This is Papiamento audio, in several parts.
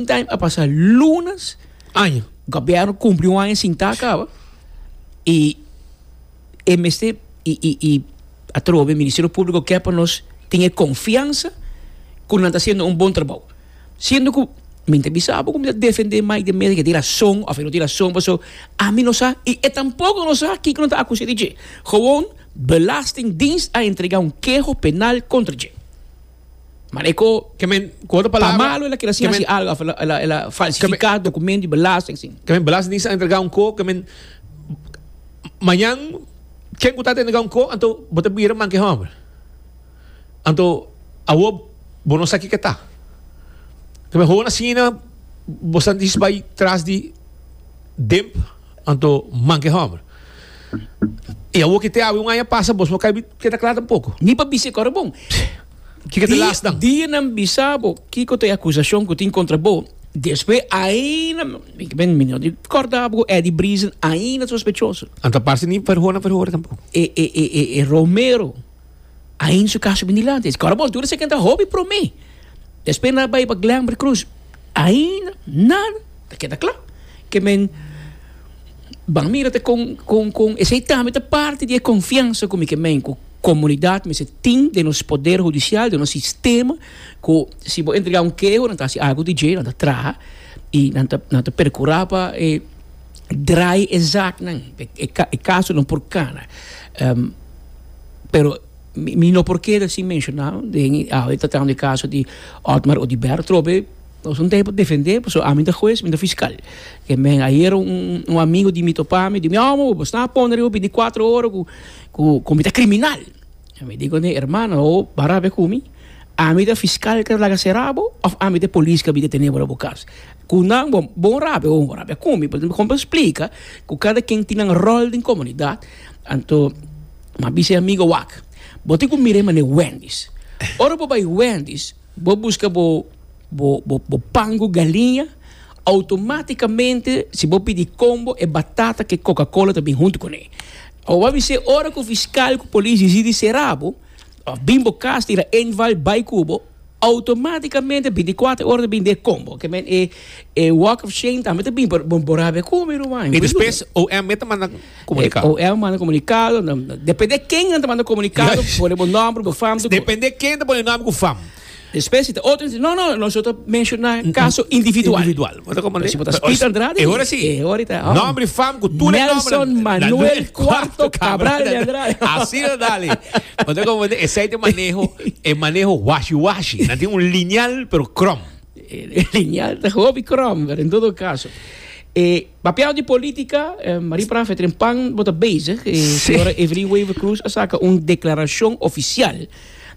Meantime a pasa lunas aña gobierno cumpli un aña sin ta caba y e mester y y y atrobe ministerio publico ke pa nos tin e confiansa cu nan ta haciendo un bon trabao siendo cu mi ta bisa bo cu mi ta defende Mike de Meza cu e tin razon of e no tin razon pasobra ami no sa y e tampoco no sa kico nan ta acuse di dje gewoon belastingdienst a entrega un keho penal contra dje. Mane ko ke men ko otro palabra. Pa malo el a kere sin hasi algo el a falsifica documento di belasting sin. Ke men belastingdis a entrega un ko ke men mañan ken ku ta ta entrega un ko anto bo ta bira man ke homber anto awo bo no sa kiko ta ke men hoon asina bo santis bai tras di demp anto man ke homber. Y awor kete awe un aña pasa bos no kai keda kla tampoco. Ni pa bisa e kor bon. Kiko ta last dan? Di di nan bisa bo kiko ta e acusacion cu tin contra bo, despues ainda mi ben mi no di corda abo cu Eddie Briezen ainda sospechoso. Anta parce ni verhoor na verhoor tampoco. E e e e e Romero. Ain su caso bin dilanti. Esque ora bos dura si ta hopi prome. Despues nan a bay pa Glenville Cruise. Ainda nan ta keda cla ke men ban mira ta con, con, con esey tambe ta parti di e confiansa cu mi ke men cu comunidad mester tin den nos poder hudicial, den nos sistema, cu si bo entrega un keho nan ta hasi algo di dje, nan ta traha y nan ta, nan ta percura pa e. draai e zaaknan, e kasunan por kana. Pero mi no por keda sin menshoná den awe e ta tratando e kaso di Otmar Oduber, trobe nos no ta hoi pa defendé pasobra ami no ta hues, mi no ta fiskal. E men ayer un amigo di mi topa mi, di mi, Omo, bo sta a pone riba bini kuatro ora ku ku mi ta kriminal. Mi di kuné, Hermano, bo baraf e ku mi? Ami ta fiskal ku ta laga será bo òf ami ta e polis ku a bini detené bo riba bo kas? Cu nan bo bon rabia o rabia con mi, mi compra splica cu cada quien tin nan rol den comunidad, anto m'a bisa e amigo wak, bo tin cu mira e mane Wendy's, ora bo bay Wendy's bo busca bo bo bo bo pan cu galiña, automaticamente si bo pidi combo e batata cu e coca cola ta bin hunto cune, awor m'a bisa ora cu fiscal cu policia dicidi cera bo of bin bo cas tira enval bay cu bo, Automáticamente binticuater ora ta bin den e combo. Ke men e e walk of shame tambe ta bin pero bo bo rabia cu mi Ruan. Y despues OM ta manda comunicado. OM manda comunicado nan depende ken nan ta manda comunicado pone bo nomber bo fam. Depende ken ta pone nomber cu fam. Despues si ta otro no no nosotros ta menciona caso individual. Manda como Pero si botas Pete Andrade. E hora si. E hora ita. Oh. Nombre fam cu tu le nombre. Nelson Manuel Cuarto Cabral de Andrade. Así lo dale. Manda como de ese de manejo, e manejo washi washi. Na tiene un lineal pero crom. E lineal de hobby crom, pero en todo caso. E papel de política, eh, Marie Prafe Trempan bota bezig. E sí. señora Evelyn Wever Cruz a saca un declaración oficial.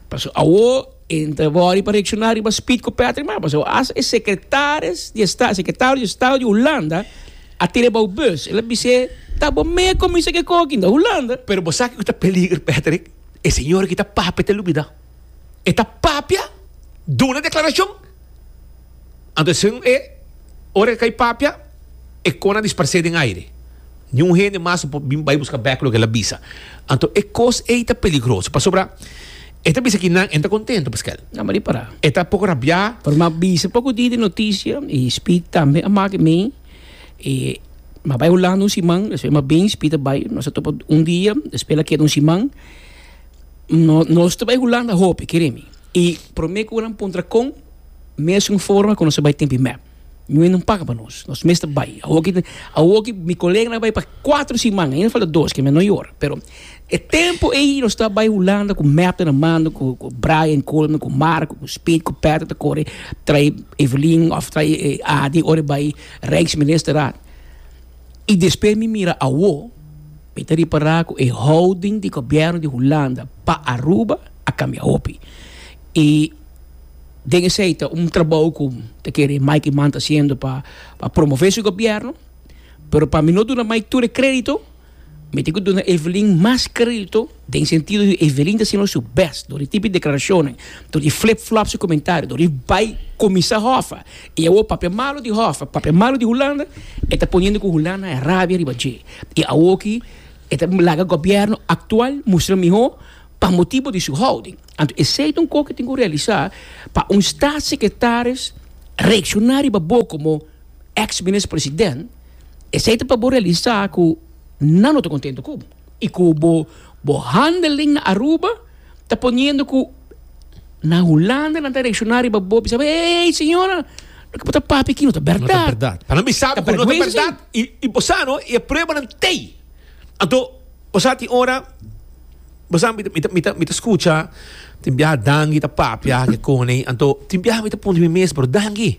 Paso awo Entra body pa reacciona riba speed cu Patrick maba so as e secretaris di estado secretario di estado di Hulanda a tira bou bus el a bis'e ta bo mea comisa ke coge aquí na Hulanda. Pero bo sa kico ta peliger Patrick e señor aki ta papia ta lubida e ta papia duna declaracion Antoesun e ora ke kai papia e kona disparse den aire. Niun hende mas no por bin bai buska bek loke el a bisa. Anto e kos ei ta peligroso pasobra e ta bisa ki nan e no ta kontentu paskei. Na mari para. E ta poko rabia. Pero mi a bisa poko di di notisia i Speed tambe a make mi e mi a bai Hulanda un siman despues mi a bin Speed a bai nos a topa un dia despues el a keda un siman nos ta bai Hulanda hopi kere mi i prome ku nan puntra kon. Mesun forma ku nos a bai tempi mep, Ñuhé no paga pa nos, nos mes ta bai. Awoki mi koleganan a bai pa kuater siman, ainda falta dos, ke mi a no yora. Pero e tempu ei nos ta bai Hulanda ku mep ta na mano, ku Brian Coleman, ku Marco, ku Speed, ku Patrick ta kore trae Evelyn òf trae e Adi ora e bai Rijksministerraad. I despues mi mira awo, mi ta ripará ku e houding di gobièrnu di Hulanda pa Aruba a kambia hopi. I Den esei ta un trabou ku ta kere Mike Eman ta hasiendo pa pa promove su gobièrnu, pero pa mi no duna Mike tur e kredito, mi tin ku duna Evelyn mas kredito den sentido di Evelyn ta hasiendo su bèst dor di tipi di deklarashonnan, dor di flip flop su komentario, dor di bai kuminsá hòffa i awor papia malu di hòffa, papia malu di Hulanda, e ta poniendo ku Hulanda a rabia riba dje. I awor aki e ta laga gobièrnu aktual mustra mihó pa motibu di su houding. Anto esei ta un kos ku tin ku realisá pa un statssekretaris reakshoná riba bo komo eks minister president, esei ta pa bo realisá ku nan no ta kontentu ku bo i ku bo bo handling na Aruba ta poniendo ku na Hulanda nan ta reakshoná riba bo bisa bo eey señora loke bo ta papia aki no ta bèrdat, pa nan bisa bo ku no ta bèrdat i bo sa no i e pruebanan t'ei. Anto bo sa tin ora. Bo sa mi ta mi ta mi ta skucha tin biaha Dangi ta papia aki kone i anto tin biaha mi ta punti mi mes pero Dangi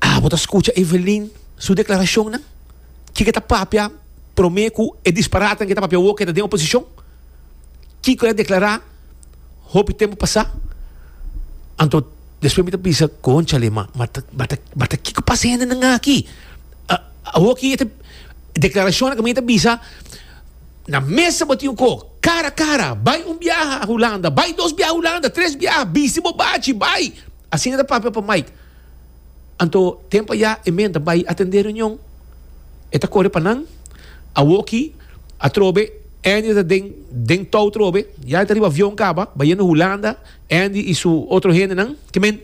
a bo ta skucha Evelin su deklarashonnan kiko e ta papia prome ku e disparate ke ta papia awo ke ta den oposishon kiko e deklará hopi tempu pasá anto despues mi ta bisa konchale ma mata mata kiko pasa hendenan aki awo ki deklarashonnan ke mi ta bisa Na mesa bo tin un kok. Kara kara, bai un biaha Hulanda, bai dos biaha Hulanda, tres biaha, bisti bo bachi, bai! Asina ta papia pa Mike. Anto tem pa ya e men ta bai atendé reunion. E ta kore pa nan. Awo ki, atrobe, Andy ta den den tou trobe. Ya e ta riba avion kaba, bayendo Hulanda, Andy i su otro hendenan. Ke men,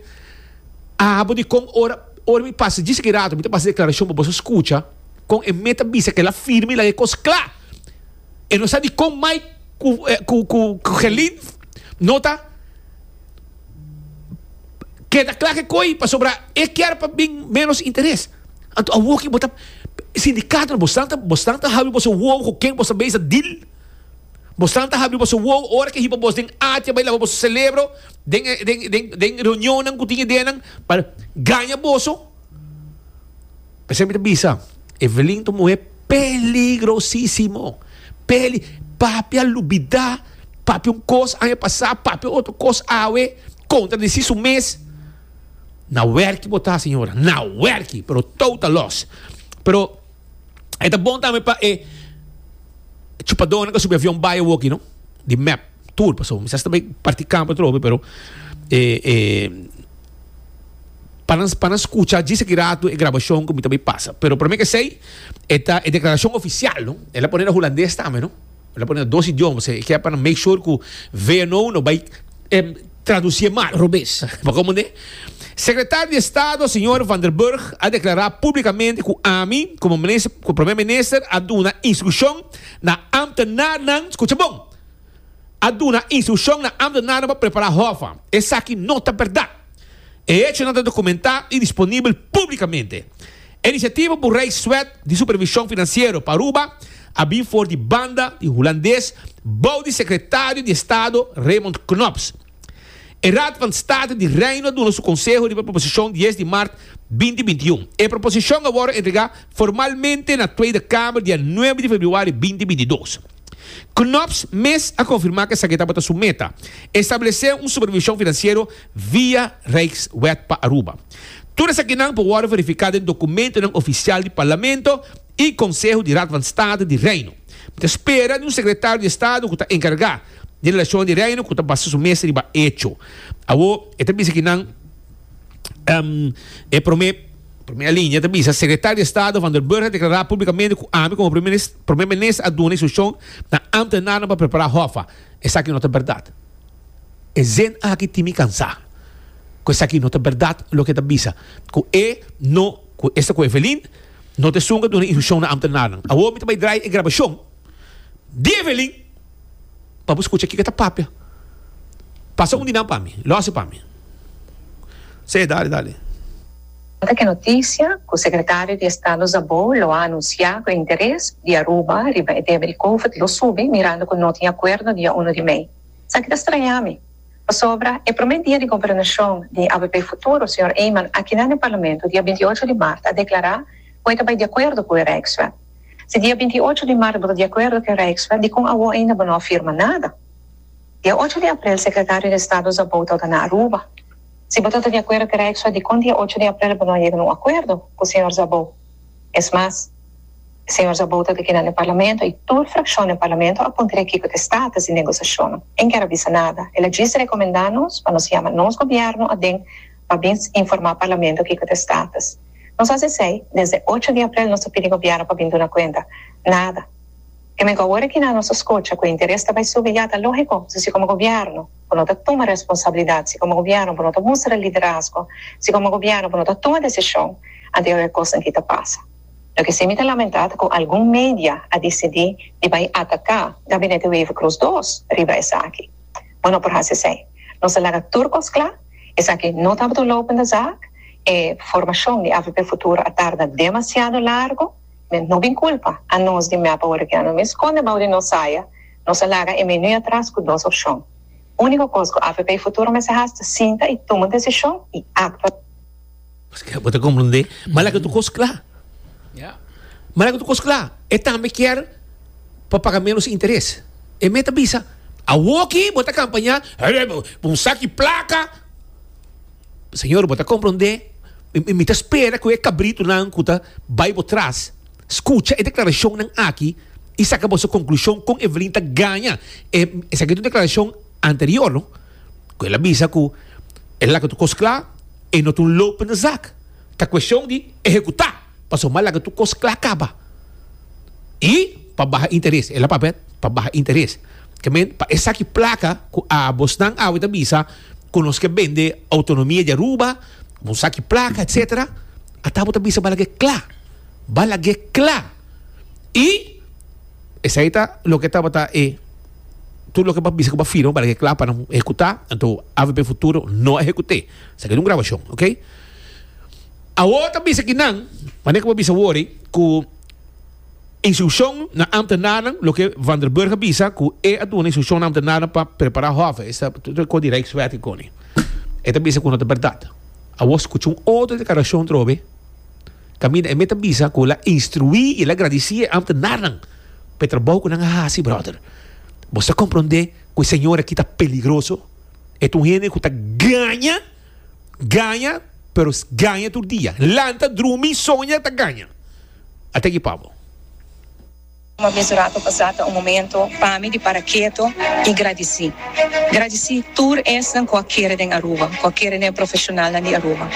a habo di kon ora, ora mi pasa djis aki rato, mi ta pasa e deklarashon pa boso skucha. Con e meta di bisa kela firme y laga e cos cla. E no sa dicon mai cu, eh, cu, cu, cu Gelin no ta keda cla ke coi, pasobra e kier pa bin menos interes. Anto awoki bo ta, sindicato, bo santa, bo santa habri boso wowo cu ken boso mesa deal. Bo santa habri boso wowo ora ke hiba bos den atia bay laba boso celebro den, den, den, den reunionnan cu tin ideanan pa gaña boso. Esei mi ta bisa, Evelyn ta un muhé peligrosísimo. Peli, papi a lubidá, papi un kos aña pasá, papi otro kos awe, kontradisí su mes. Na wèrki bo ta, señora, na wèrki, pero tou ta lòs. Pero. E ta bon tambe pa e chupadon nan ka subi avion bai awo aki no. Di mep tur paso mi sa sta bay parti campo otro hopi pero e e pa nan pa nan scucha djis aki rato e grabacion cu mi ta bay pasa. Pero prome ke esey e ta e declaracion oficial no. El a pone na hulandes tambe no. E ta pone na dos idioma, e ke pa make sure ku VNO no bai tradusie mal. Robes. Pa komo ne? Sekretario di Estado señor Van der Burg a deklará públikamente ku ami komo minister, ku Prome Minister a duna instrukshon na ámtenarnan, skucha bon, a duna instrukshon na ámtenarnan pa prepará hòf an. Esaki no ta bèrdat. E hechonan ta dokumentá i disponibel públikamente. E inisiativa ku Rijk Zwet di Supervishon Finansiero pa Aruba a bin for di banda di hulandes bou di Sekretario di Estado Raymond Knops. E Raad van State di Reino a duna su konseho riba e proposishon dies di mart binti binti i un. E proposishon a wòrdu entregá formalmente na Tweede Kamer dia nuebe di februari binti binti i dos. Knops mes a konfirmá ku esaki tabata su meta, establesé un supervishon finansiero via Rijkswet pa Aruba. Tur esakinan por wòrdu verifiká den dokumentonan ofisial di Parlamento i Konseho di Raad van State di Reino. Mi ta spera di un Sekretario di Estado ku ta enkargá di Relashonnan di Reino ku ta basa su mes riba echo. Awo e ta bisa kinan e promé promé alinea ta bisa, Sekretario di Estado Van der Burg a deklará públikamente ku ami komo Primer Minis. Prome Minister a duna instrukshon na ambtenarnan pa prepará Hoffa. Esaki no ta bèrdat. E zin aki tin mi kansá ku esaki no ta bèrdat loke e ta bisa ku e no ku esta ku Evelyn no ta esun a duna instrukshon na ambtenarnan. Awor mi ta bai drai e grabashon di Evelyn. pa bo skucha kiko e ta papia. Pasa un di nan pa mi. Lòs e pa mi. Sey, dale, dale. Nan ta kè notisia ku Sekretario di Estado Szabó lo a anunsiá ku e interes di Aruba riba e tema di Covid lo subi mirando ku no tin akuerdo dia uno di mei. Sa ki ta strañá mi? Pasobra e promé dia di gobernashon di avp futuro, señor Eman, akinan den Parlamento dia binti ocho di mart a deklará ku e ta bai di akuerdo ku e Rijkswet. Si dia binti i ocho di marzo bo ta di akuerdo ku e Rijkswet, dikon awor ainda bo no a firma nada? Dia ocho di aprel Sekretario di Estado Zabou tabata na Aruba. Si bo tabata di akuerdo ku e Rijkswet, dikon dia ocho di aprel bo no a yega na un akuerdo ku señor Zabou? Es mas, señor Zabou tabata kina na e Parlamento i tur frakshon na e Parlamento a puntra e kiko ta e status di negosashonnan. E no kier a bisa nada. El a djis rekomendá nos pa nos yama nos gobièrnu aden pa bin informá Parlamento kiko ta e status. Nos hasi esei desde ocho di aprel nos ta pidi Gobièrnu pa bin duna kuenta. Nada. Te mei ku awor e kinan nos ta skocha ku e interes ta bai subi ya ta lógiko si si komo Gobièrnu bo no ta tuma responsabilidat, si komo Gobièrnu bo no ta mustra liderazgo, si komo Gobièrnu bo no ta tuma desishon ante oe kosnan aki ta pasa. Loke si mi ta lamentá ta ku algun media a disidí di bai ataká Gabinete Wever-Croes dos riba esaki. ma no por hasi esei. Nos a laga tur kos kla, esaki no tabata un lopende zaak, e formashon di AVP Futuro a tarda demasiado largu, men no bin kulpa anos di mep awor aki ano. Mi skonde bou di nos saya, nos a laga e menu atras ku dos opshon. Úniko kos ku AVP Futuro mester has ta sinta i tuma desishon i aktua. Paske bo ta komprendé. Mala ke tu kos kla. Ja. Mala ke tu kos kla. E tambe kier pa paga menos interes. E mei ta bisa, Awoki bo ta kampañá pa un sak di plaka. Señor, bo ta komprendé, mi ta spera ku e kabritunan ku ta bai bo tras skucha e deklarashonnan aki i saka boso konklushon kon Evelyn ta gaña esaki ta un deklarashon anterior, no? Cu el a bisa cu e laga tur cos cla, e no ta un loop in de zak. Ta cuestion di ehecuta, pasobra laga tur cos cla caba. Y pa baha interes, el a papia pa baha interes. Ta meen, pa esaki placa cu abosnan awe ta bisa cu nos ke bende autonomia di Aruba, un saki placa, etcetera, ata abo ta bisa balag'e cla. Balag'e cla. Y esai ta loke tabata e. Tur loke bo bisa ku bo firma para ke kla pa nan ehekutá, anto avp futuro no a ehekut'é. Esaki ta un grabashon, ok? Awor ta bisa ki nan, mane ku bo bisa wòri, ku instrukshon na ámtenarnan, loke Van der Burg a bisa ku e a duna instrukshon na ámtenarnan pa prepará hòve, esei ta tur ko di Rijkswet i kone. E ta bisa ku no ta bèrdat. Awor skucha un otro deklarashon trobe. Kaminda e meta bisa ku el a instruí i el a gradisí e ámtenarnan pa e trabou ku nan a hasi, bròder. Bo sa komprondé ku e señor akí ta peligroso? E ta un hende ku ta gaña, gaña, pero gaña tur dia. Lanta, drumi, soña, ta gaña. Ate ki pabo. Kuma mes rato pasá ta un momento pa mi di para keto i gradisí. Gradisí tur esnan ku a kere den Aruba, ku a kere den e profeshonalnan di Aruba.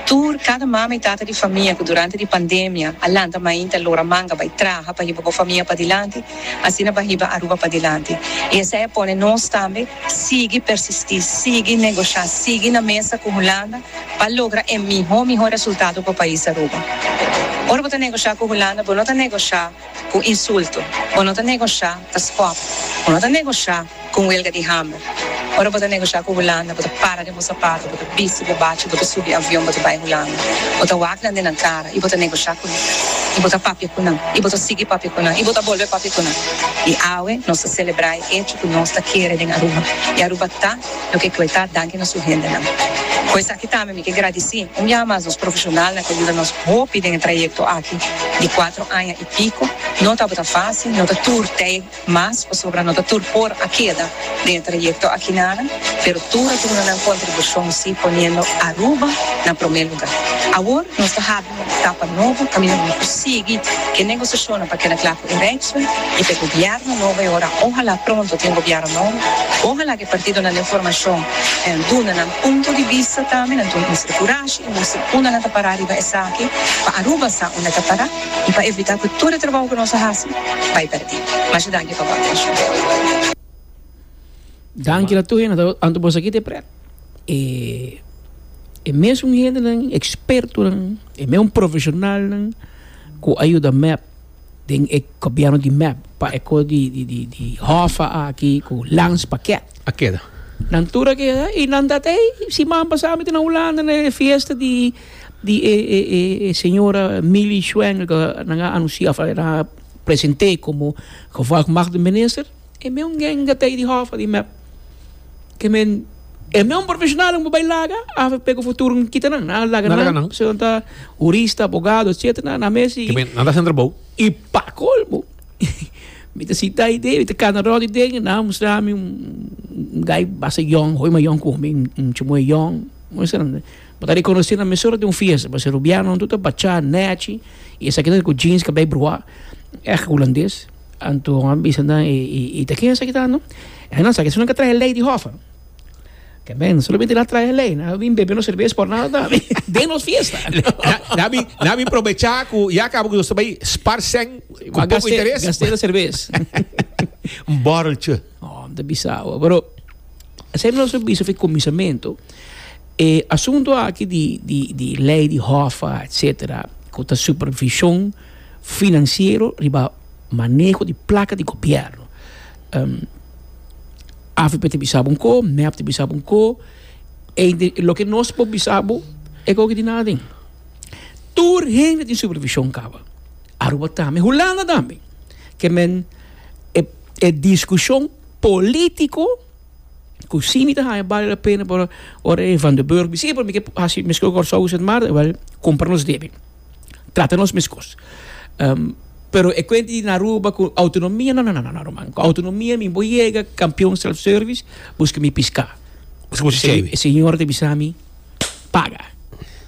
Tur kada mama i tata di famia ku durante di pandemia a lanta mainti, a lora manga bai traha pa hiba bo famia padilanti, asina pa hiba Aruba padilanti. I esei a pone nos tambe sigui persistí, sigui negoshá, sigui na mesa ku Hulanda. pa logra e mihó mihó resultado pa pais Aruba. Ora bo ta negosha ku Hulanda bo no ta negosha ku insulto, bo no ta negosha ta skòp, bo no ta negosha ku un welga di hamber. Ora bo ta negosha ku Hulanda bo ta para den bo sapato, bo ta bisti bo bachi, bo ta subi avion bo ta bai Hulanda, bo ta wak nan den nan kara i bo ta negosha ku nan, i bo ta papia ku nan, i bo ta sigui papia ku nan, i bo ta bolbe papia ku nan. I awe nos ta selebrá e echo ku nos ta kere den Aruba, i Aruba ta. lo ke Cloetá danki na su hendenan. Ku esaki tambe mi ke gradisí un biaha mas nos profeshonalnan ku a yuda nos hopi den e trayekto aki di kuatro aña i piko. No tabata fásil, no ta tur tei mas pasobra no ta tur por a keda den e trayekto aki nada, pero tur a duna nan kontribushon sí poniendo Aruba na promé lugá. Awor nos ta hapi. Un etapa nobo kaminda bo por sigui ke negosashonnan pa keda kla ku e reitso i pa e gobièrnu nobo e ora ohala pronto tin gobièrnu nobo ohala ke partidonan den formashon duna nan punto di bista tambe nan tur muestra kurashi i muestra unda nan ta pará riba esaki pa Aruba sa unda e ta pará i pa evitá ku tur e trabou ku nos a hasi bai pèrdí masha danki pa bo atenshon. Danki la tur hende ta anto boso aki te pret. E e mesun hendenan ekspertonan e mesun profesionalnan ku a yuda mep den e gobièrnu di mep pa eko di di di di hòfa aki ku lans paket A keda. nan tur a keda i nan ta tei siman pasá mi ta na Hulanda na e fiesta di di e e e e señora Milly Schwengel ku nan a anunsiá afuera nan a present'é komo gevolgmatigde minister. E meun genga ta ei di hofa di mep ke men e meun profeshonalnan bo bai laga avp ku futuro nan kita nan nan laga nan seun ta hurista abogado etc nan mesi ke men nan ta sentra bou i pa kolmo mi ta sita ai den mi ta kana rot ai den nan a mustra mi un gai basta yòn hoi ma yòn ku mi un chimoe yòn bo ta rekonosi na mesora den un fiesta pasobra rubiano nan tur ta bacha nèchi i esaki nan ku jeans kabei bruha èg hulandes. Anto a bisa nan, e, e, e ta ken esaki ta, no? E nan sa ke su nan ka trahe lei di hof, no? Ke men, solamente nan trahe lei, nan a bin bebe nos serves por nada ta, den nos fiesta. Nan a bin, nan a bin probecha ku ya kaba ku nos ta bai spar sèn ku poko Gast'e, interes. gast'e na serves. Un bòrreltje. Oh, ta bisa awa. Pero, esei nos a bisa for e kuminsamentu. E asuntu aki di, di, di lei di hof, etsetera, ku ta supervishon, Finansiero riba maneho di plaka di gobièrnu. Avp ta bisa bo un ko, mep ta bisa bo un ko, ende loke nos por bisa bo e gogo di naden. Tur hende tin supervishon kaba. Aruba tambe, Hulanda tambe. Ke men e e diskushon polítiko ku si mi ta haña bale la pena, pero ora e Van den Burg bisita, pero mi ke hasi meskien ku Kòrsou ku Sint Maarten, wèl, kumpra nos debe. trata nos meskos. Pero e kuent di na Aruba ku outonomia, no, no, no, no, ruman. Ku outonomia mi bo yega kampion self-service, buska mi piska. Buska bo chichei mi. E señor ta bisa mi, Paga.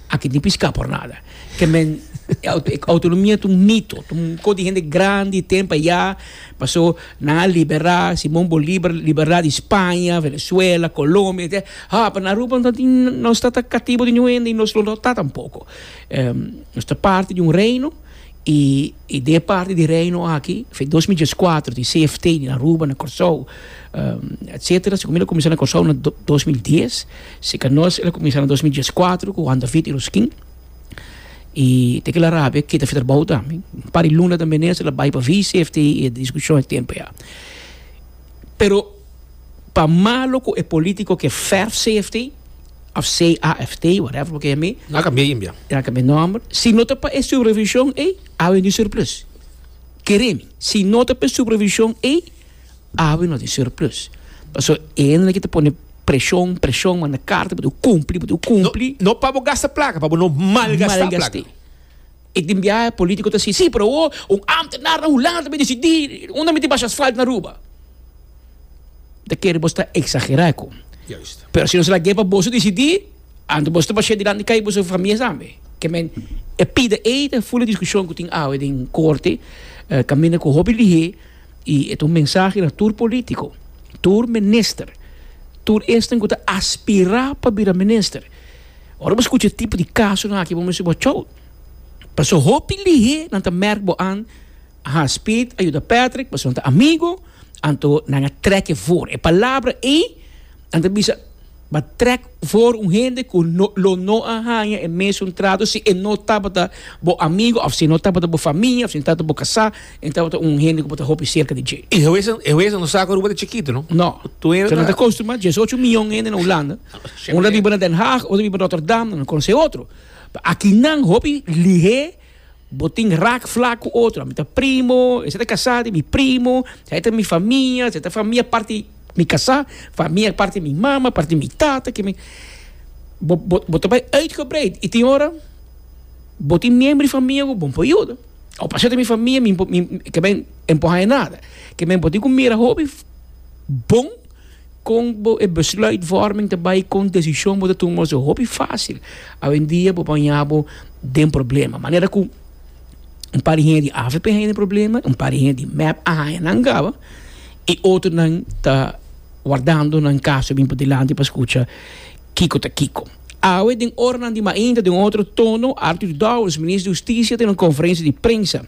Aki tin piska por nada. Ke men, outonomia ta un mito, ta un kos di hende grandi ten pa ya, paso nan a libera, Simon Bolibar libera di Spaña, Venezuela, Colombia, etcetera. Haa, pero na Aruba no tin, no sta ta katibo di ningún hende i nos lo no ta tampoko. Nos ta parti di un reino i e de e parti di e reino aki fin di dos mil dieskuater tin CFT na Aruba, na Kòrsou, etsetera. Segun mi el a kuminsá na Kòrsou na dos mil dies, sika nos el a kuminsá na dos mil dieskuater ku Juan David i Ruskin. I te kila rabia keda afia trabou tambe. Un par di luna ta menes el a bai pa vi CFT i e diskushon e tempu ya. Pero pa malo ku e polítiko ke fèrf CFT. of CAFT, whatever bo kende. Nan a cambi'e imbia. Nan a cambi'e nomber. Si no ta pa e supervision ey, awe no tin surplus. Keremi, si no ta pa e supervision ey, awe no tin surplus. Paso e hende na kita pone presion, presion, manda carta, bo tin cu cumpli, bo tin cu cumpli. No pa bo gasta placa, pa bo no malgasta placa. E tin biaha politico ta si, si, pero awo un ambtenaar na Hulanda ta bin decidi unda mi tin basha asfalt na Aruba. Ta kere boso ta exagera ecu. Pero si nos lag'e pa boso decidi, anto boso ta bash'e dilanti cai boso famia tambe. Ke men, e pida ey ta ful e discusion cu tin awe den corte, caminda cu hopi lihe y e ta un mensahe na tur politico, tur minister, tur esnan cu ta aspira pa bira minister. Ora bo skucha e tipo di kasonan aki bo mester bo tjou pasobra hopi lihé nan ta mèrk bo an a has Piet a yuda Patrick pasobra nan ta amigu anto nan a trèk'e for. E palabra ei nan ta bisa b'a trèk for un hende ku no lo no a haña e mesun trato si e no tabata bo amigu òf si e no tabata bo famia òf si e no tabata bo kasá. E tabata un hende ku por ta hopi serka di dje. E huesnan, e huesnan no sa ku Aruba ta chikitu, no? No. Tur hende ta. Nan ta kostumbrá djes ocho mion hende na Hulanda. Un ta biba na Den Haag, otro ta biba Rotterdam, nan no konosé otro. Pa akinan hopi lihé, bo tin rak flak ku otro. Mi ta primo, esei ta kasá di mi primo, esei ta mi famia, esei ta famia parti mi kasá, famia parti mi mama, parti mi tata, ke mi. Bo, bo, bo ta bai uitgebreid i tin ora bo tin miembro di famia ku bon por yuda. O pa shete mi famia mi mi ke men empuha e nada. Ke men por tin ku mira hopi bon kon bo e besluitvorming ta bai kon desishon bo ta tuma so hopi fásil awendia bo baña bo den problema manera ku un par di hende di avp a haña den problema un par di hende di mep a haña nan gaba i otro nan ta wardando nan kaso bin pa dilanti pa skucha kiko ta kiko. Awe den oranan di mainta den otro tono Arthur Dowers, Minister di Husticia tin un conferencia di prensa.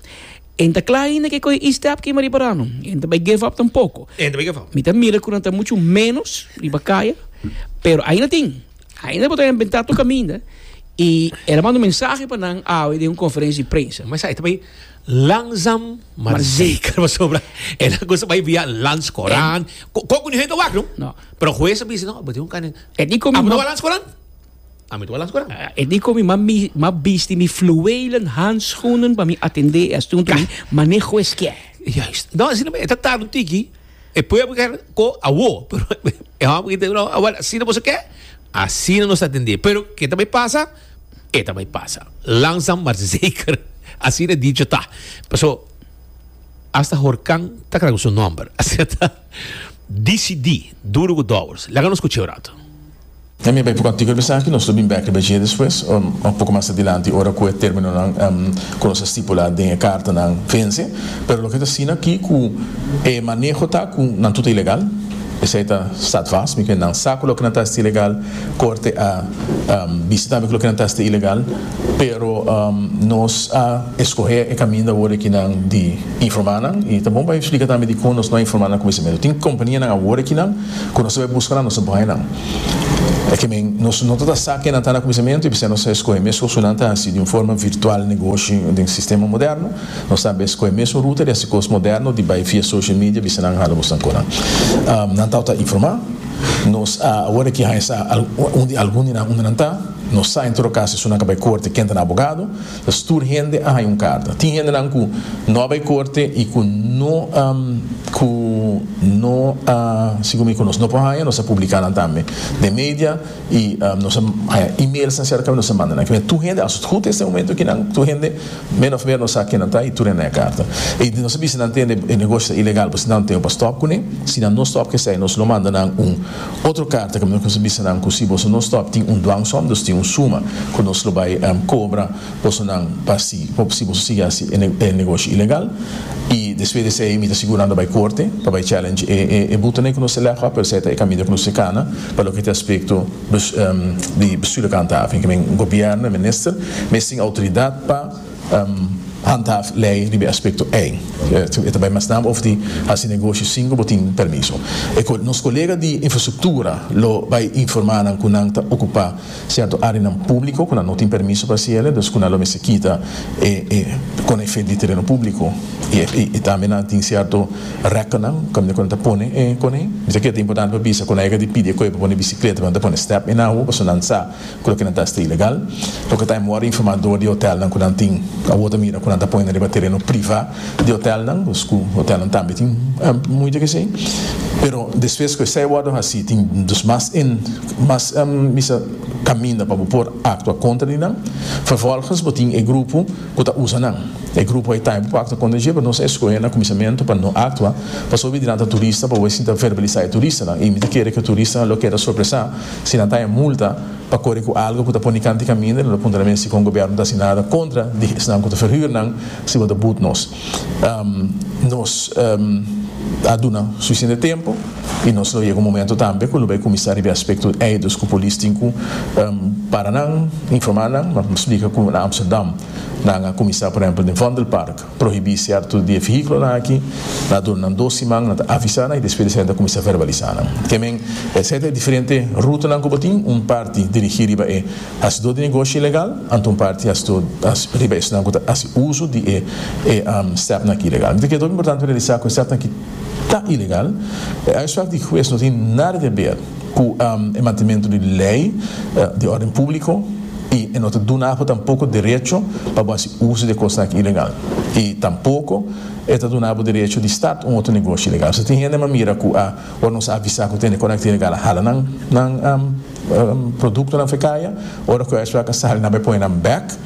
Enta ta cla ainda ke coge e-step kema riba rano. E no ta bay give up tampoco. Mi ta mira cu nan ta mucho menos riba caya pero ainda tin. Ainda bo ta inventa tur caminda y el a manda un mensahe pa nan awe den un conferencia di prensa. Mas esaki ta bay langzam maar zeker pasobra e langosta bay via lands Coran. Coco ni hende ta wak no pero hues a bisa no bo tin un caminda E di komi ma balans koran? Ami ta balans koran. E di komi ma mi ma bisti mi fluwelen handschoenen pa mi atende e asunto mi maneho e skier. Juist. No, asina me, ta tarde tiki. E pueblo ker ko awo, pero e hom ki te no, awal asina boso ke, asina nos atende. Pero ke ta bay pasa, e ta bay pasa. Langzaam maar zeker, asina dicho ta. Paso, hasta Horkan ta kara ku su nomber. Asina ta. Disidí, duru ku dòbers. Laga nos kuch'é un ratu. E mi a bai prokantiko riba esaki. Nos lo bin bèk riba dje despues, ò un poko mas adilanti, ora ku e términonan ku nos a stipulá den e kartanan vense. Pero loke ta asina akí ku e maneho ta ku nan tur ta ilegal. Esei ta statvast. Mi krê nan sa ku loke nan ta esta ilegal. Korte a bisa tambe ku loke nan ta esta ilegal. Pero nos a eskohé e kaminda awor ekinan di informá nan i ta bon pa eksplika tambe dikon nos no a informá nan kuminsamentu. Tin kompanianan awor ekinan ku nos ta bai buska nan, nos ta bai nan. Ke men, nos no ta ta sa kenan ta na kuminsamentu i p'esei nos a eskohé mes ku su nan ta hasi di un forma virtual negoshi den sistema moderno. Nos tambe a eskohé mes un ruta di hasi kos moderno di bai via social media bisa nan hala bosnan ku nan. Nan tau ta informá. Nos a awor aki haña sa un di algun di nan unda nan ta. Nos sa en todo cas esun a ka bai corte ken ta na abogado ta stur hende a haña un carta. Tin hendenan cu no a bai corte y cu no cu no a segun mi conoce no por haña nos a publica nan tambe den media y nos a haña emails nan cerca y nos a manda nan kinan tur hende as het goed este momento kinan tur hende men of mer nos sa kinan ta y tur hende a haña carta y nos a bisa nan tende e negoshi ta ilegal pues nan tengo pa stop cune si nan no stop cu esai nos lo manda nan un Otro karta ke mi lo kier bisa nan ku si boso no stòp tin un dwangsòm, dus tin un suma ku nos lo bai kobra bosonan pa si si boso sigui hasi e negoshi ilegal i despues di esei mi ta sigur nan ta bai korte pa bai challenge e butonan ei ku nos ta lèf akua pero esei ta e kaminda ku nos ta kana pa loke ta aspekto di bestuur lokal ta habi men gobièrnu e minister mes tin outoridat pa Handhaaf lei riba e aspekto ei. E ta bai mas nan over di hasi negoshi sin ku bo tin permiso. E nos kolega di infrastruktura lo bai informá nan ku nan ta okupá sierto áreanan públiko ku nan no tin permiso pa hasi el'e, dus ku nan lo mester kita e e kona efet di tereno públiko i tambe nan tin sierto rekkennan kaminda ku nan ta pone e kona ei. Mi ta kere ta importante pa bisa konega di pidi e koe pa pone bisikleta, pa nan ta pone step ei na awo pasobra nan sa ku loke nan ta hasta ilegal. Loke ta emor informa dor di hotelnan ku nan tin awor ta mira ku nan ta pone riba tereno priva di hotelnan, dus ku hotelnan tambe tin mucha ke esei. Pero despues ku esei a wordo hasi tin dus mas mas bisa kaminda pa bo por aktua kontra di nan. Vervolgens bo tin e grupo ku ta usa nan. E grupo ei ta bo aktua kontra dje pero nos a eskohe na kuminsamentu pa no aktua pasobra mi di nan ta turista pa bo a sinta verbalisá e turistanan i mi ta kere ku e turistanan lo keda sorpresá. Si nan ta e multa pa kore ku algu ku ta pone kanti kaminda, no ta punta na mester kon gobièrnu ta hasi nada kontra di esnan ku ta ferhür nan si bo ta but nos. Nos a duna sufisiente tempu i nos lo yega un momentu tambe ku lo bai kuminsá riba e aspekto ei dus ku polis tin ku para nan, informá nan, splika ku na Amsterdam nan a kuminsá, por ehèmpel, den Vondelpark. prohibí sierto di e vehículonan aki, na duna nan dos siman, nan ta avisá nan y despues esaki nan ta cuminsá verbalisá nan. Ke men e seta e diferente rutanan cu bo tin, un parti dirigí riba e hacidó di negoshi ilegal, anto un parti hacidó riba esnan cu ta haci uso di e e stepnan aki ilegal. Mi ta kere ta hopi importante pa realisá cu e stepnan aki ta ilegal, e uitspraak di huez no tin nada di haber. cu e mantenemento di ley di orden publico y e no ta duna abo tampoco derecho pa bo haci uso di e cosnan aki ilegal y tampoco e ta duna abo derecho di start un otro negoshi ilegal. So tin hende a mira cu a ora nos a avisa cu ta hende conecta ilegal a hala nan productonan fe caya, ora cu esnan a sali nan bo e pone nan bek.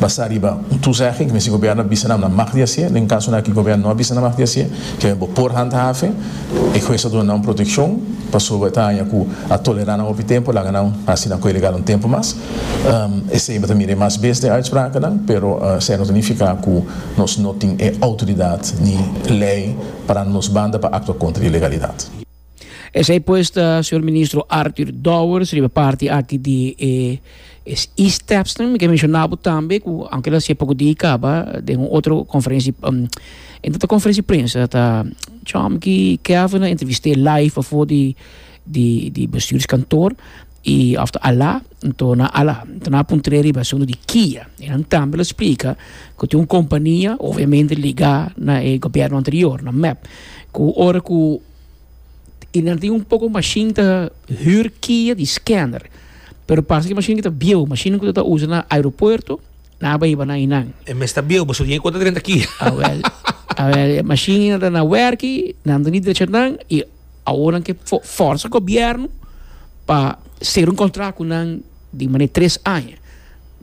Basá riba un tuzegging ku mester gobièrnu a bisa nan a mag di hasié, den kasonan aki gobièrnu no a bisa nan a mag di hasié, ke men bo por handhafe, e hues a duna nan un protekshon pasobra e ta haña ku a tolerá nan hopi tempu, laga nan hasi nan ku ilegal un tempu mas. Esei bo ta mira e mas bes den uitsprakennan, pero esei no ta nifiká ku nos no tin e outoridat ni lei parando nos banda pa aktua kontra e ilegalidat. Esei pues ta Señor Ministro Arthur Dowers riba parti aki di e e-stepsnan. Mi ke menshona bo tambe ku aunke lo hasié poko di i kaba den un otro konferensi e no ta konferensi prensa ta Chomke Kevin a entrevist'é live afo di di bestuurskantoor. Y after alá N torna alá. N ta na puntr'é riba asuntu di Kia. Y nan tambe lo splika ku tin un kompania, obviamente ligá na e gobièrnu anterior, na mep, ku ora ku i nan tin un poko mashin ta hür Kia di scanner, pero parse ki mashinnan ki ta bieu, mashinnan ku ta ta usa na aeropuerto, nan a bai hiba na einan. E mes ta bieu, boso tin e konta drenta Kia. Awel, awel, e mashin ei nan ta na wèrki, nan ta di drecha nan, i. Aworan ke forsa gobierno pa ser un contract cu nan di manera tres aña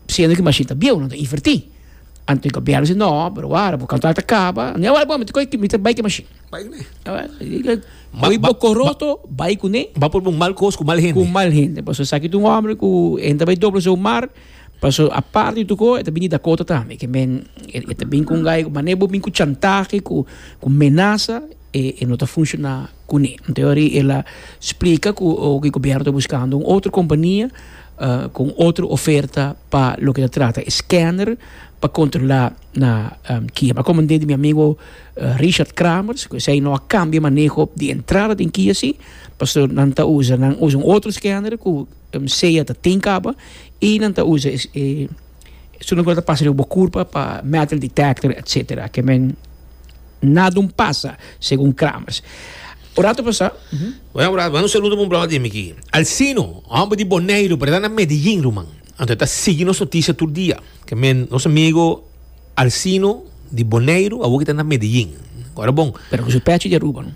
siendo cu e machine ta bieuw nan ta inverti anto e gobierno a si no pero wara bo contract ta caba anto awor bo mi ta coge mi ta bay ki machine bay cu ne mooi boco roto bay cu ne ba por bo mal cos cu mal hende cu mal hende pasobra esaki ta un hombre cu hende ta bay doble su mar pasobra aparte di toco e ta bini dakota tambe ke men e ta bini cu un gay manera bo bini cu chantahe cu menaza E e no ta funciona cune. Teorie ela splica cu oki gobierno ta buscando un otro compania cu un otro oferta pa loke ta trata e scanner pa controla na kia. M'a comende di mi amigo Richard Cramers cu esey no a cambia maneho di entrada den kia si pasobra nan ta usa nan usa un otro scanner cu sea ta tin caba y nan ta usa e Su no ta pasa riba bo kurpa pa metal detector etc. Ke men na dun pasa, segun Kramers. Un ratu pasá. Buen obra, manda un saludo pa un brother di mi aquí. Alcino, hombre di Boneiru, pero e ta na Medellín, ruman. Anto e ta sigui nos noticia tur dia. Ke men, nos amigo Alcino di Boneiru, awor ki ta na Medellín. Ora bon. Pero ku su pechi di Aruba, no?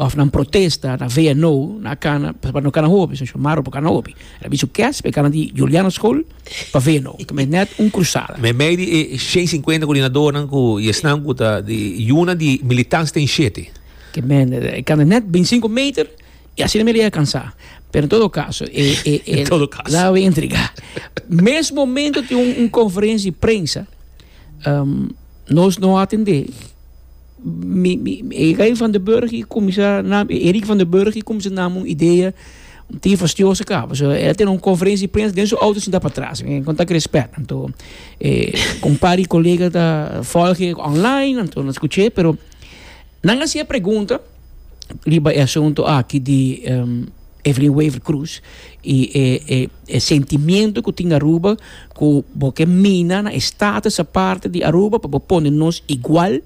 Of nan protesta na VNO na cana pa no cana hopi so Shomaro por cana hopi era bisu kes pa e cana di Juliana school pa VNO ta mester net un cruzada. Meimei di e shen cincuenta coordinadornan cu y esnan cu ta di yuna di militants ten shete. Ke men e cana net binticinco meter y asina mi a llega cansa pero en todo caso e e e En todo caso. laga mi intriga mes momento tin un conferencia di prensa nos no a atende. e Rey van den Burg i kuminsá nam e Erik van den Burg i kuminsá nam un idea tin fastioso kaba so e tene un konferensia di prensa den su outo sinta patras e konta kere spèt anto e kumpa di kolega ta volg e online anto nan skuch'é pero nan hasié pregunta. riba e asuntu aki di Evelyn Wever Croes i e e e sentimiento ku tin Aruba ku bo ke mina na e status aparte di Aruba pa bo pone nos igual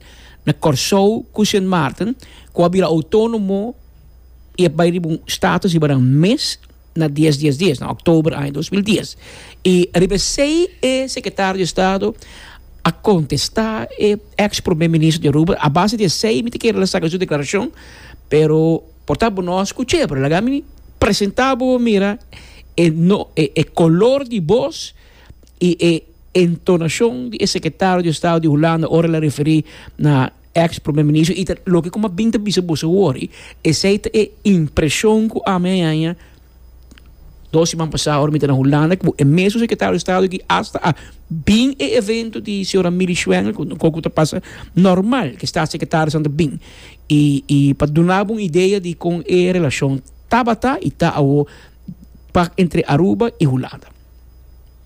na Kòrsou ku Sint Maarten ku a bira outonomo i a bai riba un status riba nan mes na dies dies dies, na oktober aña dos mil dies. I riba esei e sekretario di estado a kontestá e èks promé minister di Aruba, a base di esei mi ta kere el a saka su deklarashon, pero por ta bo nòs ku chévere laga mi presentá bo mira e no e kolor di bos i e entonashon di e sekretario di estado di Hulanda ora el a referí na Ex Primer Minister y ta loke cu mi a bin ta bisa boso awor y esey ta e impresion cu ami a haña dos siman pasa ora mi ta na Hulanda cu e mesun Secretario di Estado aki hasta a bin e evento di señora Milly Schwengel cu ta coco ta pasa normal cu e Staatssecretariesnan ta bin y y pa duna bo un idea di con e relacion tabata y ta awor pa entre Aruba y Hulanda.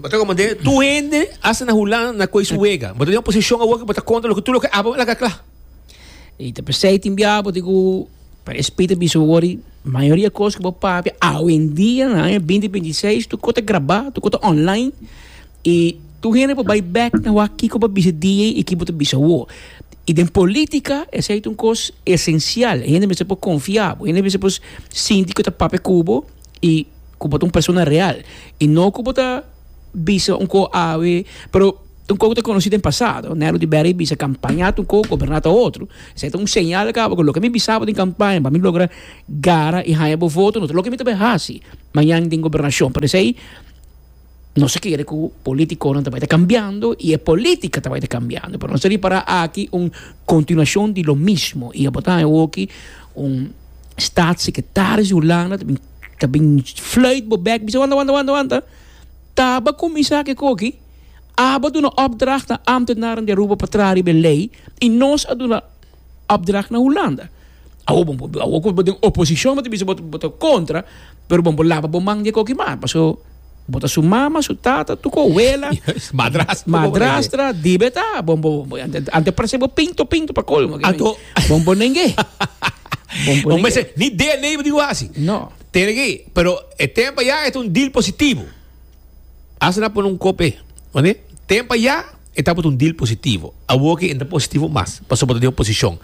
Bo ta komand'é, tur hende a sta na hulá na koe su wega. Bo ta den un posishon awor ku bo ta konta loke tur loke Abba a laga kla. I ta p'esei tin bia bo tin ku e Spiritu a bisa bo wòrdu mayoria kos ku bo papia awendia na aña binti binti i seis tur kos ta grabá, tur kos ta online i tur hende por bai bèk na wak kiko bo a bisa di'e i ki bo ta bisa awor. I den polítika esei ta un kos esensial. Hende mester por konfia bo, hende mester por sinti ku e ta papia ku bo y cu bo ta un persona real y no cu bo ta bisa un coho awe pero un coho cu ta conoci den pasado Nelu di Berry bisa campaña ta un coho goberna ta otro esey ta un señal cabo cu loke mi bisa bo den campaña pa mi logra gara y haya bo voto no ta loke mi ta bay haci mañan den gobernacion pero esey Nos a kere ku politikonan ta bai ta kambiando i e polítika ta bai ta kambiando, pero nos ta ripará aki un kontinuashon di lo mismo i tabata awoki un statssekretaris di Hulanda ta bin ta bin fluit bo bèk bisa wanta wanta wanta wanta taba kuminsá ke koki aba duna opdracht na ámtenaren di Aruba pa traha riba e lei i nos a duna opdracht na Hulanda. Awor bo por, awor ku bo den oposishon bo ta bisa bo ta kontra, pero bo por laba bo man di e koki mak, paso bo ta su mama, su tata, tur ku abuela, madrastra, dibe ta, bo bo, anto e parse bo pinto pinto pa kolmo, bo por nengé. Bo mester ni DNA bo tin ku hasi. No. Tene ki, pero e tempa ya e ta un deal positivo. Asina pone un kope, oné? Tempo ayá e tabata un deal positivo. Awor ke e ta positivo mas, pasobra bo ta den oposishon.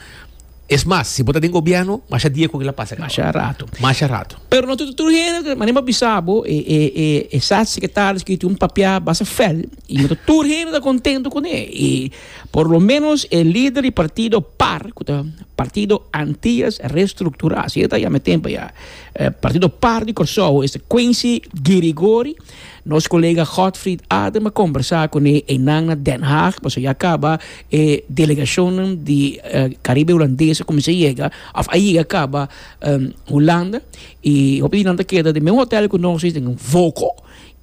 Es mas, si bo ta den gobièrnu, masha dia ku kila pasa kaba. Masha ratu. Masha ratu. Pero no ta tur tur hende ta, manera mi a bisa bo, e, e, e, e statssekretaris ku tin un papia basta fèl, i no ta tur hende ta kontentu kuné. I por lo ménos e lider di partido par, ku ta Partido Antillas Reestructuradas, e ta yama e tempo ayá. E partido par di Kòrsou esta Quincy Girigori. Nos kolega Godfried Adem a kombersá kuné einan na Den Haag pasobra ya kaba e delegashonnan di Karibe Hulandes a kuminsá yega òf a yega kaba Hulanda i hopi di nan ta keda den e mesmu hotèl ku nos esei den Voko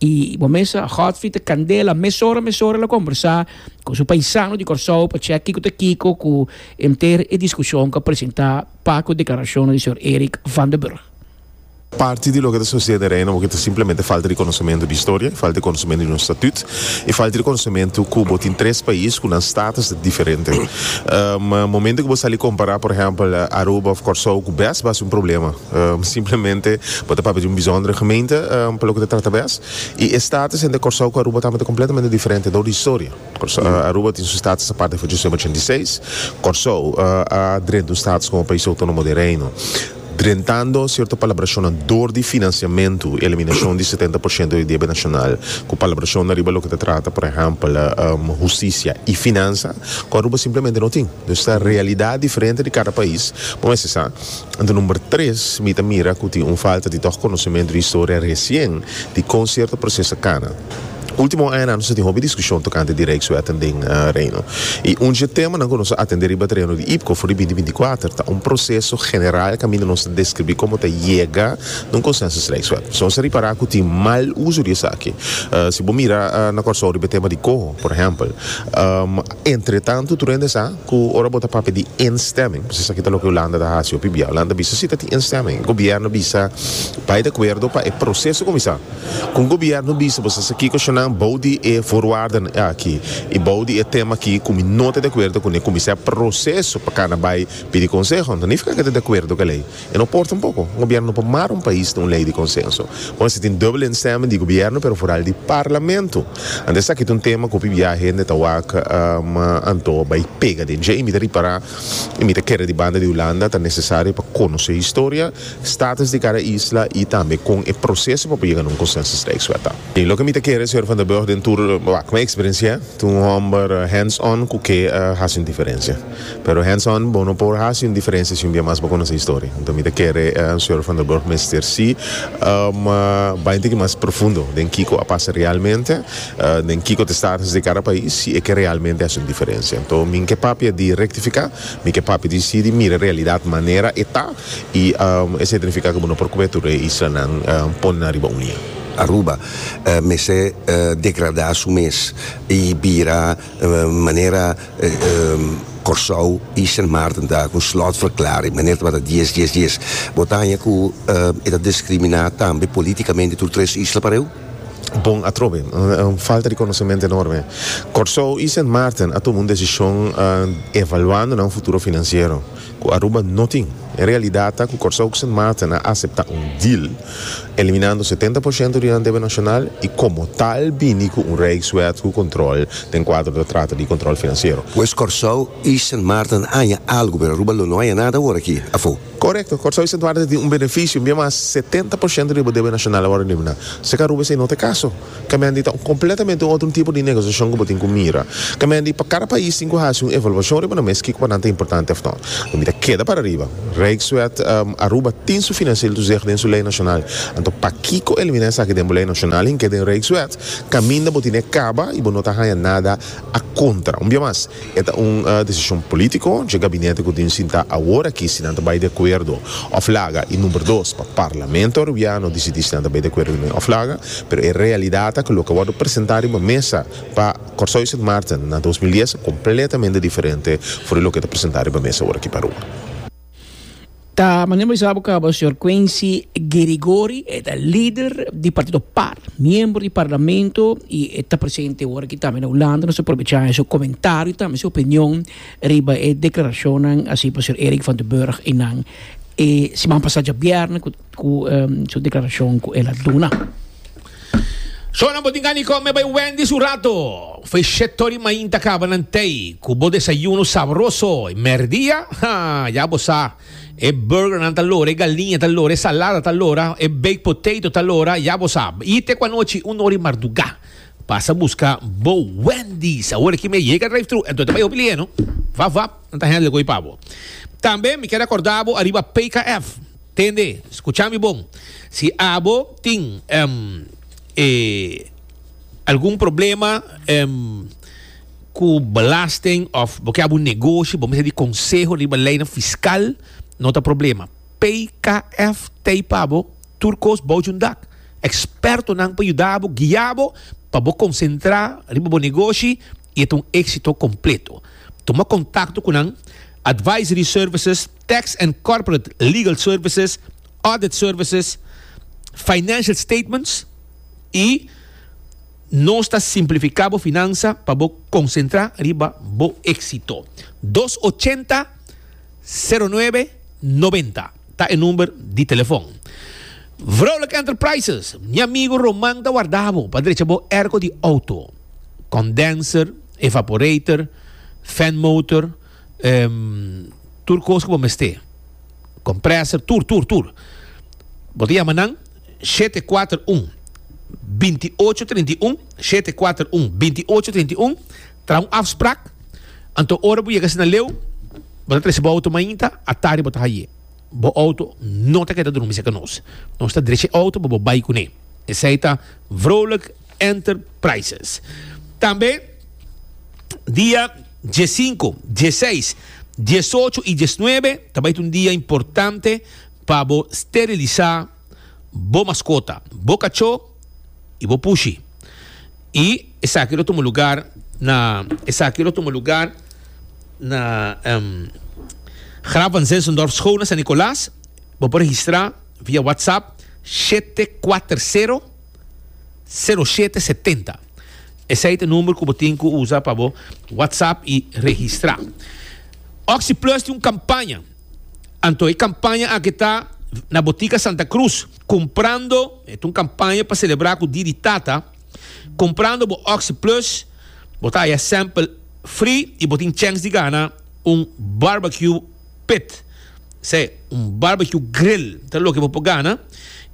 i bo mes a Godfried ta kandela mesora mesora el a kombersá ku su paisano di Kòrsou pa chèk kiko ta kiko ku henter e diskushon ku a presentá. Pa cu declaracionnan di señor Erik van den Burg. Parti di loke ta sucede na Reino porque ta simplemente falta di conocemento di historia y falta di conocemento di nos statut y falta di conocemento cu bo tin tres pais cu nan status ta diferente. Momento cu bo sali compara por ehempel Aruba of Corsou cu bes bo haci un problema simplemente bo ta papia di un bizondere gemeente pa loke ta trata bes y e status entre Corsou cu Aruba ta completamente diferente door di historia. Aruba tin su status aparte for Josema ochenta i seis. Kòrsou a drenta un status komo pais outónomo di e Reino, drentando sierto palabrashonnan dor di finansiamentu i eliminashon di setenta por shento di debe nashonal, ku palabrashonnan riba loke ta trata, por ehèmpel, hustisia i finansa, ku Aruba simplemente no tin. Dus ta realidat diferente di kada pais. Bo mester sa, anto number tres, mi ta mira ku tin un falta di tòg konosementu di historia resien di kon sierto proseso a kana. Ultimo añanan nos a tin hopi diskushon tokante di Rijkswetten den Reino. I un dje temanan ku nos a atendé riba tereno di IPCO for di binti binti kuater ta un proseso general kaminda nos ta deskribí komo ta yega na un konsensus Rijkswet. Pasobra nos a ripará ku tin mal uso di esaki. Si bo mira na Kòrsou riba e tema di koho, por ehèmpel, entretantu tur hende sa ku ora bo ta papia di instemming, pasobra esaki ta loke Hulanda ta hasi hopi bia, Hulanda a bisa si ta tin instemming, gobièrnu a bisa bai di akuerdo pa e proseso kuminsá. Kon Gobièrnu bisa boso sa kiko shonnan bou di e forwardanan aki i bou di e tema aki ku mi no ta di akuerdo kuné ku mi sa e proseso pa kana bai pidi konseho? Anto nifiká ku e ta di akuerdo ku e lei. E no por tampoko. Un gobièrnu no por mara un pais na un lei di konsenso. Bo mester tin dubbelstemming di gobièrnu pero foral di parlamento. Anto esaki ta un tema ku pibia hende ta wak ma anto bai pega den dje i mi ta ripará i mi ta kere di banda di Hulanda ta nesesario pa konosé historia. status di cada isla y tambe con e proceso pa por yega na un consenso streekswet ta. Y loke mi ta kere señor Van der Burg den tur, bah, cu mi experiencia ta un homber hands on cu ke a haci un diferencia. Pero hands on bo no por haci un diferencia si un bia mas bo conoce historia. Enton mi ta kere señor Van der Burg mester si bay un tiki mas profundo den kico a pasa realmente den kico ta status di cada pais si e ke realmente haci un diferencia. Enton mi ke papia di rectifica, mi ke papia di si di mira realidad manera e ta. y e certifica cu bo no por cube tur e islanan pone nan riba un lia. Aruba mester degrada su mes y bira manera Corsou y Sint Maarten ta cu slot verklaring manera tabata dies dies dies. Bo ta haña cu e ta discrimina tambe politicamente tur tres isla pareu? Bon atrobe. Un falta di conocemento enorme. Corsou y Sint Maarten a tuma un decision evaluando nan futuro financiero. Ku Aruba no tin. E realidat ta ku Kòrsou ku Sint Maarten a aseptá un deal, eliminando setenta por shento di nan debe nashonal i komo tal bini ku un rijkswet ku kontrol den kuadro ta trata di kontrol finansiero. Pues Kòrsou i Sint Maarten a haña algu, pero Aruba lo no haña nada awor aki, afó. Korekto, Kòrsou i Sint Maarten tin un benefisio, bier mas setenta por shento di bo debe nashonal awor a eliminá. Seka Aruba esei no ta e kaso? Kamendi ta un kompletamente un otro tipo di negosiashon ku bo tin ku mira. Kamendi pa kada pais tin ku hasi un evaluashon riba nan mes kiko pa nan ta importante òf no. Lo mi ta keda paariba. Rijkswet Aruba tin su finansiële toezicht den su lei nashonal. Anto pakiko eliminá esaki den bo lei nashonal hinke den Rijkswet kaminda bo tin e kaba i bo no ta haña nada a kontra? Un bia mas. E ta un desishon polítiko dje gabinete ku tin sintá awor aki si nan ta bai di akuerdo òf laga. I number dos, pa Parlamento Peruviano disidí si nan ta bai di akuerdo di manera òf laga. Pero e realidat ta ku loke wòrdu presentá riba mesa pa Kòrsou di Sint Maarten na dos mil dies ta kompletamente diferente for di loke ta presentá riba mesa awor aki pa Arua. Ta manera mi sa bo cabo señor Quincy Gerigori, e ta lider di partido par, miembro di parlamento y e ta presente ora aki tambe na Hulanda. Nos ta provecha e su comentario y tambe su opinion riba e declaracionnan a hacía pa señor Eric van den Burg eynan e siman pasa djabièrnè cu su declaracion cu el a duna. Zonan bo tin gana di come bay Wendy's un rato. Fey sheto di mainta caba nan tey cu bo desayuno sabroso. Y merdia, ha, ya bo sa, e burgernan ta lora, e galiña ta lora, e salada ta lora, e baked potato ta lora, ya bo sa. Yte cu anochi una ora di marduga pasa busca bo Wendy's. Awor aki mi a yega drive-thru, enton ta bay hopi lie, no? Vap vap, nan ta handle goy pa bo. Tambe mi kier acorda bo ariba PKF. Tende, scucha mi bon. Si abo tin e algun problema cu belasting of bo ke habu un negoshi, bo mester di conseho riba leynan fiscal, no ta problema. PKF tey pa bo tur cos bouchi un dak. Expertonan pa yuda bo, guia bo pa bo concentra riba bo negoshi y e ta un exito completo. Tuma contacto cu nan Advisory Services. Tax and Corporate Legal Services, Audit Services, Financial Statements y Nos ta simplifica bo finansa pa bo concentra riba bo exito. Dos ochenta, sero nuebe, noventa ta e number di telefon. Vrouwelijke Enterprises, Mi amigo Roman ta warda bo pa drecha bo airco di auto, condenser, evaporator, fan motor, Ehm, tur cos cu bo mester. Compresor, tur, tur, tur. Bo ta llama nan, shete cuater un, binti ocho trinta i un, shete cuater un, binti ocho trinta i un, traha un afsprak, anto ora bo yega asina leu, bo ta trece bo auto mainta, atari bo ta haye. Bo auto no ta keda drumi cerca nos. Nos ta drecha e auto pa bo bay cune. Esey ta vrolijk. Enterprises. Tambe dia diesinco, dieseis, diesocho y diesnuebe ta bay ta un dia importante pa bo sterilisa bo mascota, bo cacho y bo pushi. Y esaki lo tuma lugar na esaki lo tuma lugar na Graaf van Zinzendorp School na San Nicolas. Bo por registra via WhatsApp shete kuater sero. Sero shete setenta, esei ta number ku bo tin ku usa pa bo WhatsApp i registrá. Oxi Plus tin un kampaña, anto e kampaña aki ta na Botika Santa Cruz, Kumprando, e ta un kampaña pa selebrá ku Dia di Tata, kumprando bo Oxi Plus, bo ta haya sample free i bo tin chèns di gana un barbecue. pit, esei un barbecue grill ta loke bo por gana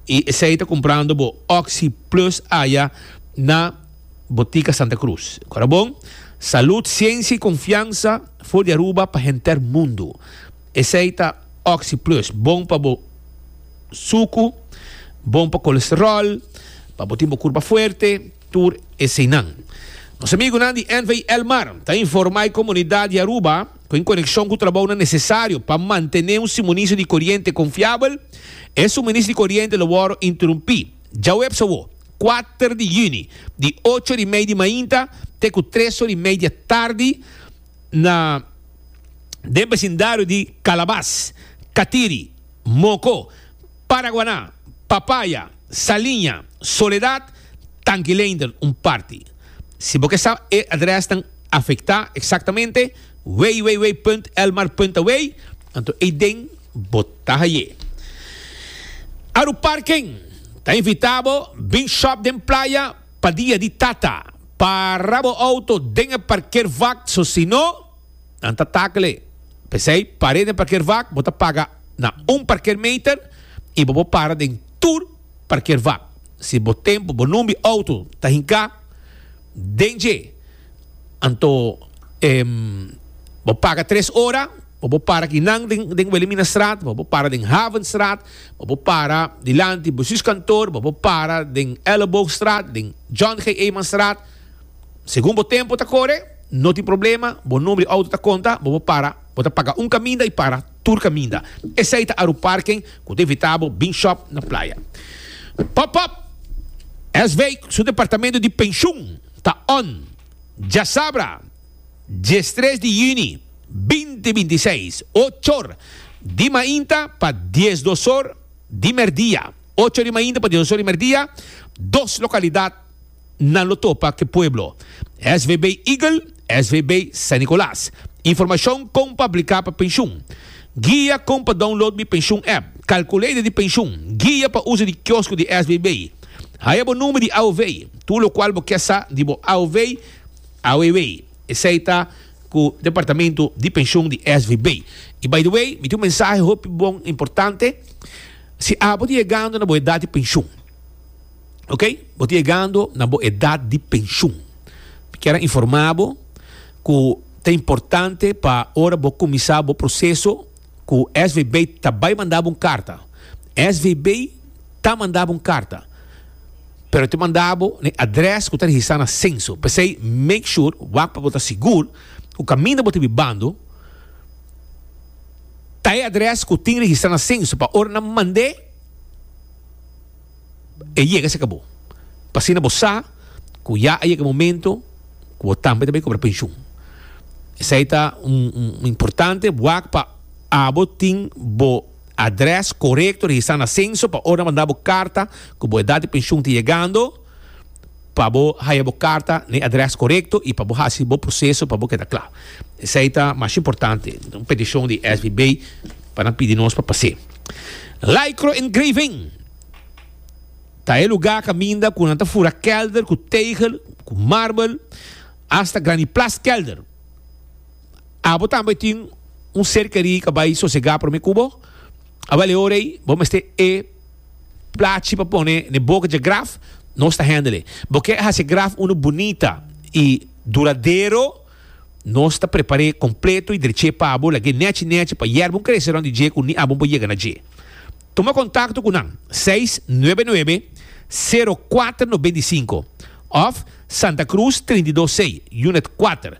y esei ta comprando bo oxi plus aya na Botica Santa Cruz. Corabon, Salud, Ciencia y Confianza for di Aruba pa henter mundo. Esei ta oxi plus, bon pa bo sucu, bon pa colesterol, pa bo tin bo curpa fuerte, tur eseinan. Nos amigunan di NV El Mar ta informa e comunidad di Aruba. cu en coneccion cu trabounan necesario pa mantene un suministro di coriente confiabel, e suministro di coriente lo worde interumpi djaweps awo, kuater di juni, di ocho ori mei di mainta te cu tres ori mei di atardi na den becindario di Calabas, Catiri, Moco, Paraguaná, Papaya, Saliña, Soledad, Tangileender un parti. Si bo ke sa e adrèsnan afektá eksaktamente, www.elmar.away, anto ei den bo ta haye. Aruparken ta invitá bo bin shòp den playa pa Dia di Tata. Para bo outo den e parkeervak, sosino. nan ta takle. P'esei, par'é den parkeervak, bo ta paga na un parkeermeter i bo por para den tur parkeervak. Si bo tempu, bo numbi outo ta hinká den dje, anto bo paga tres ora, bo por para aki nan den Weleminastraat, bo por para den Havenstraat, bo por para dilanti Bestuurskantoor, bo por para den Elleboogstraat, den John G. Eemanstraat, Segun bo tempo ta kore, no tin problema, bo nomber di outo ta konta, bo por para, bo ta paga un kaminda i para tur kaminda. Esei ta Aruparken ku ta invitá bo bin shòp na playa. Pòp-Pòp! SV su departamento di penshun ta on! Djasabra, diestres di yüni binti binti i seis, ochor di mainta pa dies dosor di merdia, ocho di mainta pa dies dosor di merdia, dos lokalidat, nan lo topa ke pueblo. SVB Eagle, SVB San Nicolas. Informashon kon pa apliká pa penshun. Guia kon pa download mi penshun app. Kalkulader di penshun. Guia pa uso di kiosko di SVB. Haya bo number di AOV. Tur lokual bo ke sa di bo AOV, AOEW. Esei ta ku departamento di penshun di SVB. I by the way, mi tin un mensahe hopi bon importante. Si abo ta yegando na bo edat di penshun. Ok, bo ta yegando na bo edat di penshun. Mi kier a informá bo ku ta importante pa ora bo kuminsá bo proseso ku SVB ta bai manda bo un karta. SVB ta manda bo un karta, pero e ta manda bo na e adrès ku ta registrá na senso. P'esei make sure, wak pa bo ta sigur, ku kaminda bo ta bai bando ta e adrès ku tin registrá na senso pa ora nan mand'é. e yega a sekabó. Pa asina bo sa ku ya a yega e momento ku bo tambe ta bin kobra penshun. Esei ta un importante wak pa abo tin bo adrès korekto registrá na senso pa ora manda bo karta ku bo edat di penshun ta yegando. pa bo haya bo karta na e adrès korekto i pa bo hasi bo proseso pa bo keda kla. Esei ta mas importante. Un petishon di SBB pa nan pidi nos pa pas'é. Lycro-engraving ta e lugá kaminda ku nan ta fura kèlder ku tegel, ku marbel, asta grandi plas kèlder. Abo tambe tin un serkerí ka bai sosegá promé ku bo. Awal e ora ei bo mester e. Plachi pa pone ne boca dje graf nos ta handle bo ke haci graf uno bunita y duradero nos ta prepare completo y dreche pa bo lag'e nechi nechi pa yerba un crece rond di dje cu ni abo bo yega na dje tuma contacto cu nan seis nuebe nuebe sero cuater nobenta y cinco of Santa Cruz trinta y dos C unit cuater.